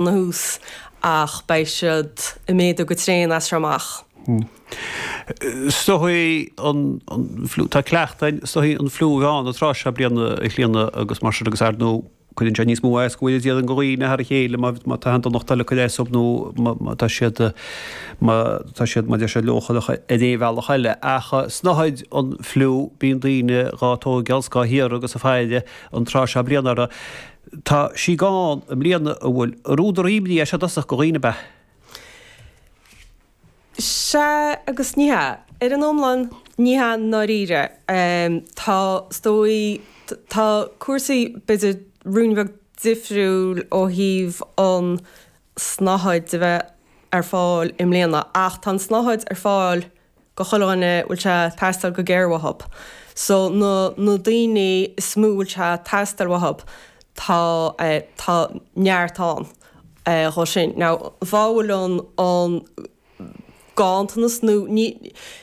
na thús ach beidh siad ag méadú go tréan as seo amach. Snáthaid an, tá cleachtadh ar shnáthaid an fliú um an tráth seo bliana le blianta agus mar sin agus ar ndóigh cuireann sé níos mó éasca go bhfuil sí déanta ann go dhaoine thar a chéile má tá aon donacht eile ag cur as dóib nó má tá siad má tá siad má deir siad leochaileach ar aon bhealach eile ach snáthaid an fliú bíonn daoine dhá tógáil, dhá hiarraidh agus á fáil an tráth seo bliana ar a Tá sí gann i mbliana, an bhfuil? An údar imní é seo i dtosach do dhaoine, ab ea? Sea agus ní hea. Ar an iomlán, ní hea i ndáiríre. Tá, is dóigh, tá cúrsaí b'fhéidir ruainne beag difriúil ó thaobh an tsnáthaid a bheith ar fáil i mbliana ach tá an tsnáthaid ar fáil i go chuile dhuine a bhfuil sé ag teastáil go géar uathub so na na daoine is mó a bhfuil sé ag teastáil uathub tá tá neart ann dhóib sin. Now má bhfuil an an ganntanas nó ní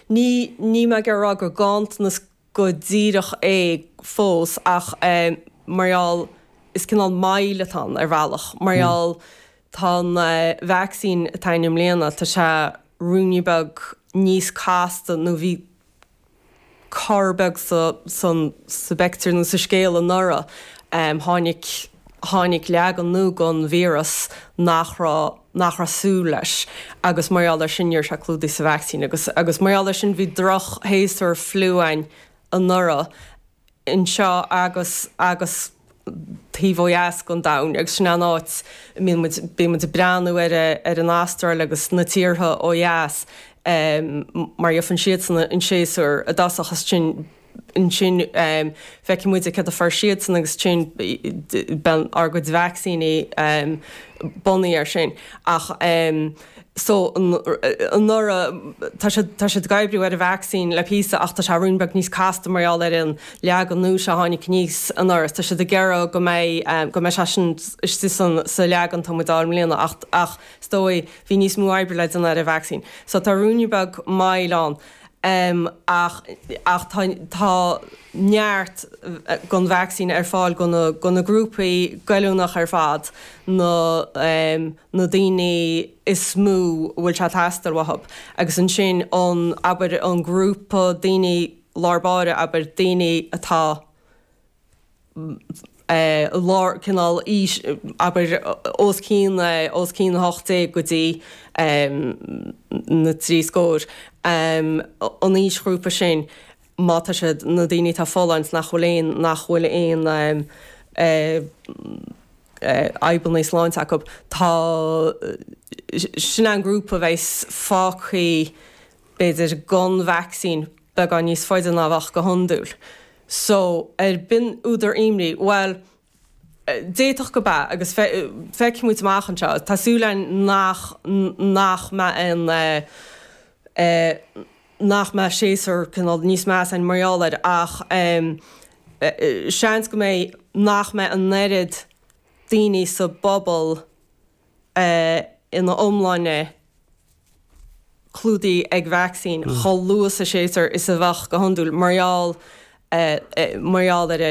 ní níl mé ag iarraidh a rá gur ganntanas go díreach é fós ach mar gheall is cineál moill atá ann ar bhealach mar gheall Tá an vacsaín atá againn i mbliana, tá sé ruainne beag níos casta nó bhí cor beag sa bpictiúr nó sa scéal anuraidh. Tháinig, tháinig leagan nua den víreas nach raibh, nach raibh súil leis agus mar gheall ar sin ní raibh sé clúdaithe sa vacsaín agus, agus mar gheall ar sin bhí drochshéasúr fliú againn anuraidh. anseo agus agus taobh ó dheas den domhan agus sin é an áit a mbíonn muid, bíonn muid ag breathnú ar ar an Astráil agus na tíortha ó dheas mar gheobhann siadsan an séasúr i dtosach agus ansin ansin feicfidh muide céard a fuair siadsan agus ansin bíonn ár gcuid vacsaíní bunaithe air sin ach. so anuraidh tá siad tá siad ag oibriú ar an vacsaín le píosa ach tá sé ruainne beag níos casta mar gheall ar an leagan nua seo a tháinig aníos anuraidh. Tá siad ag iarraidh go mbeidh go mbeidh sé sin istigh san sa leagan atá muid ag fáil i mbliana ach ach is dóigh bhí níos mó oibre le déanamh ar an vacsaín so tá ruainne beag moille ann. em ach ach tá tá neart den vacsaín ar fáil go na go na grúpaí goilliúnach ar fad na em na daoine is mó a bhfuil sé ag teastáil uathu agus ansin an abair an grúpa daoine lár báire abair daoine atá lár cineál aois, abair os cionn os cionn 18 go dtí na trí scór, an aoisghrúpa sin, má tá siad na daoine atá folláin nach bhfuil aon nach bhfuil aon fhadhbanna sláinte acu, tá sin an grúpa a bheas fágtha b'fhéidir, gan vacsaín beagán níos faide ná a bheadh go hiondúil. So, ab in údar imní? Bhuel, d'fhéadfadh go mb'ea agus feicfimid amach anseo. Tá súil againn nach nach mbeidh aon nach mbeidh séasúr cineál níos measa againn mar gheall air ach seans go mbeidh nach mbeidh an oiread daoine sa bpobal, é ina iomláine clúdaithe ag vacsaín chomh luath sa séasúr is a bheadh go hiondúil mar gheall mar gheall ar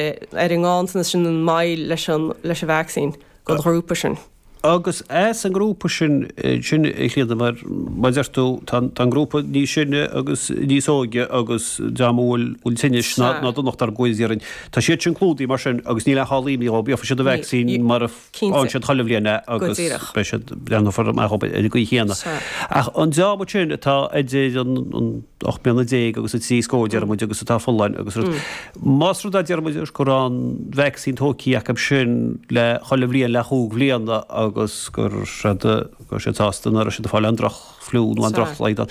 ar an nganntanas sin an moill leis an leis an vacsaín don ghrúpa sin. Agus é sa ngrúpa sin sin a Chlíodhna mar mar deir tú tá an tá an grúpa níos sine agus níos óige agus dream a bhfuil bhfuil tinnis nó nó donacht ar gcluichí iarainn. Tá siad sin clúdaithe mar sin agus níl aon chall imní dóibh gheobhaidh siad an vacsaín mar a Cinnte. siad chuile bhliain é Go agus díreach. beidh siad, leanfar amach ar an gcaoi chéanna. Sea. Ach an dream sin atá idir an, an, ocht mbliana déag agus an trí scór deir muid agus atá folláin agus rud, más rud é deir muid anois go raibh an vacsaín tógtha acu sin le chuile bhliain le chúig bhliana agus gur siad, go raibh siad sásta nach raibh siad ag fáil aon droch-fhliú nó aon Sea. droch-shlaghdáin.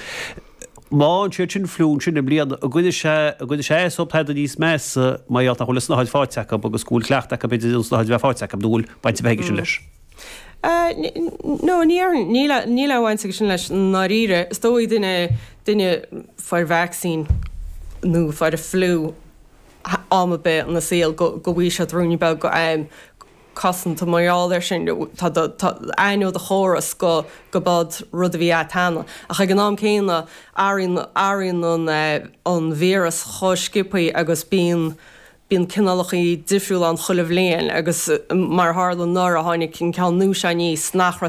Má fhaigheann siad sin fliú ansin i mbliana. An gcuireann sé an gcuireann sé as dóibh tada níos measa mar gheall nach bhfuil an tsnáthaid faighte acu agus go bhfuil cleachtadh acu b'fhéidir an tsnáthaid a bheith faighte acu nó an bhfuil baint ar bith aige sin leis? No, níl a níl aon bhaint aige sin leis i ndáiríre. Is dóigh duine duine a fuair vacsaín nó a fuair fliú am ar bith ina saol go go bhfaighidh siad ruainne beag cosanta mar gheall air sin, tá do, tá, aithneoidh do chóras go, go b'sheod rud a bhí agat cheana. Ach ag an am céanna, athraíonn, athraíonn an eh, an víreas chomh sciopthaí agus bíonn, bíonn cineálachaí difriúla ann chuile bhliain agus mar a tharla anuraidh, tháinig an ceann nua seo aníos nach raibh,